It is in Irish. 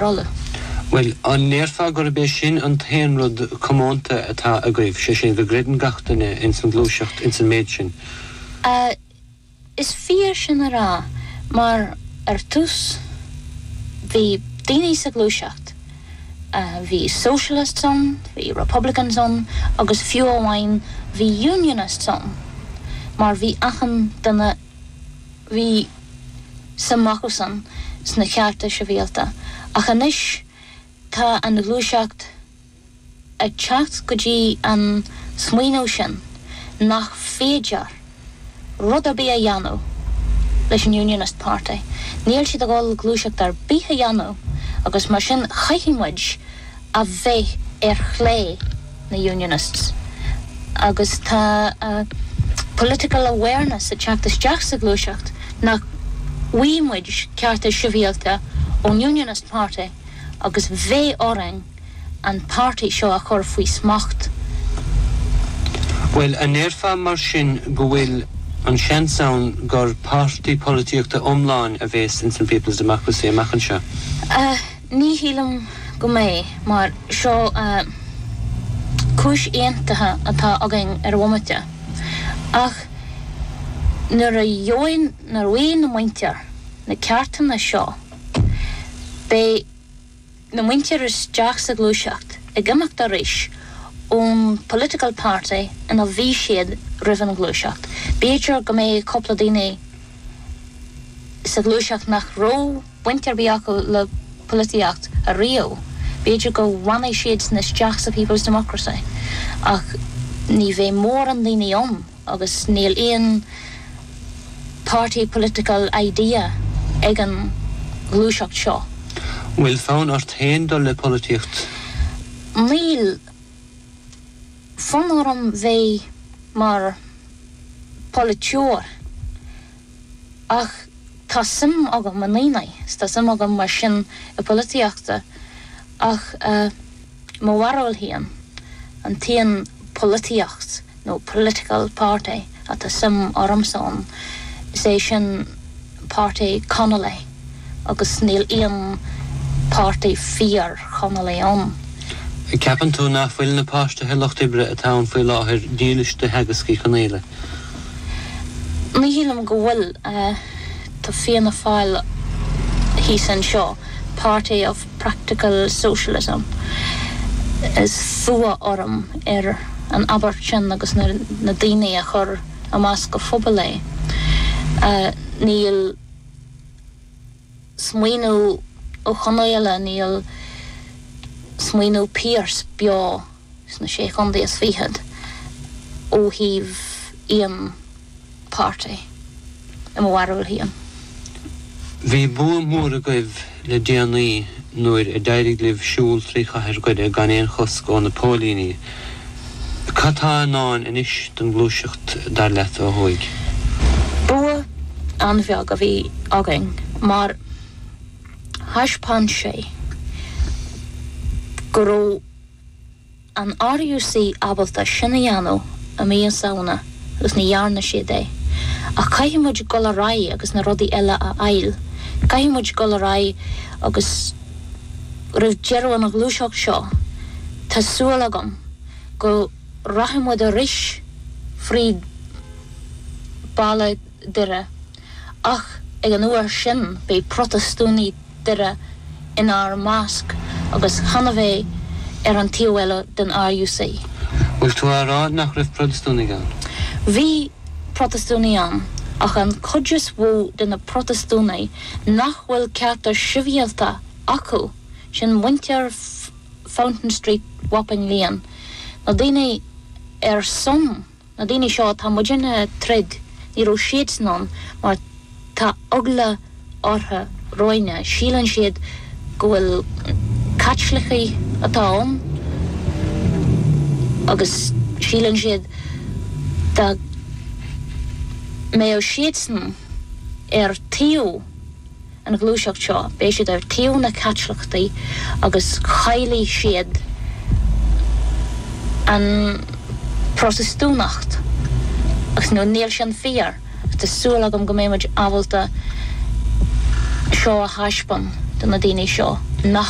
Bhuel, an ndéarfá gurb é sin an t-aon rud comónta atá agaibh, is é sin, go gcreideann gach duine ins an ghluaiseacht ins an méid sin? Is fíor sin a rá, mar ar dtús bhí daoine sa ghluaiseacht, bhí socialists ann, bhí republicans ann agus fiú amháin bhí unionists ann, mar bhí achan duine bhí suim acu ins na cearta sibhialta, ach anois tá an ghluaiseacht ag teacht go dtí an smaoineamh sin nach féidir rud ar bith a dhéanamh leis an Unionist Party, níl siad ag dul gluaiseacht ar bith a dhéanamh agus mar sin caithfidh muid a bheith ar chlé na Unionists agus tá political awareness ag teacht isteach sa ghluaiseacht nach bhfaighidh muid cearta sibhialta ón Unionist Party agus beidh orainn an páirtí seo a chur faoi smacht. Bhuel, an ndéarfá mar sin go bhfuil an seans ann gur páirtí polaitíochta iomlán a bheas ins an People's Democracy amach anseo? Ní shílim go mbeidh, mar seo cúis aontaithe atá againn ar an bhomaite, ach nuair a gheobhaidh na muintir na ceartanna seo, beidh na muintir isteach sa ghluaiseacht ag imeacht arís don political party ina bhí siad roimh an ghluaiseacht. B'fhéidir go mbeidh cúpla daoine sa ghluaiseacht nach raibh, baint ar bith acu le polaitíocht riamh. B'fhéidir go bhfanfaidh siad sin isteach sa People's Democracy ach ní bheidh mórán daoine ann agus níl aon party political idea ag an ghluaiseacht seo. An bhfuil fonn ort féin dul le polaitíocht? Níl fonn orm bheith mar pholaiteoir. Ach tá suim agam i ndaoine, 's tá suim agam mar sin i polaitíocht, ach eh, mo bharúil féin, an t-aon polaitíocht nó political party atá suim ormsa ann, is é sin páirtí Connolly. agus níl aon páirtí fíor-Chonallaigh ann. Ceapann tú nach bhfuil na páirtithe lucht oibre atá ann faoi láthair dílis do theagasc Uí Chonghaile? Ní shílim go bhfuil. Tá Fianna Fáil thíos anseo, party of practical socialism. Is fuath orm ar an abairt sin agus na daoine a chur amach go poiblí é. Níl. smaoineamh Uí Chonghaile, níl smaoineamh Pearse beo sna Sé Chontae is Fichead ó thaobh aon pháirtí, i mo bharúil féin. Bhí bua mór agaibh le déanaí nuair a d'éirigh libh siúl trí chathair Dhoire gan aon chosc ó na póilíní. Cad tá i ndán anois don ghluaiseacht dar leat ó thuaidh? Bua an-bheag a bhí againn mar thaispeáin sé go raibh. an RUC ábalta sin a dhéanamh i mí an Samhna agus ní dhearna siad é. Ach caithfidh muid dul ar aghaidh agus na rudaí eile a fháil. Caithfidh muid dul ar aghaidh agus roimh deireadh an ghluaiseacht seo tá súil agam go rachaidh muid ar ais fríd ballaí Doire, ach ag an uair sin beidh Protastúnaigh Dhoire inár measc agus chan a bheith ar an taobh eile den RUC. Bhfuil tú a' rá nach raibh Protastúnaigh ann? Bhí Protastúnaigh ann, ach an chuid is mhó de na Protastúnaigh nach bhfuil cearta sibhialta acu, sin muintir Fountain Street, Wapping Lane, na daoine ar son Na daoine seo atá muidinne ag troid, ní raibh siadsan ann mar tá eagla orthu romhainne, síleann siad go bhfuil Caitlicigh atá ann agus síleann siad dá mbeadh siadsan ar thaobh an ghluaiseacht seo, beidh siad ar taobh na Caitliceachta agus caillfidh siad an Protastúnacht agus nó níl sin fíor, ach tá súil agam go mbeidh muid ábalta seo a thaispeáin do na daoine seo nach.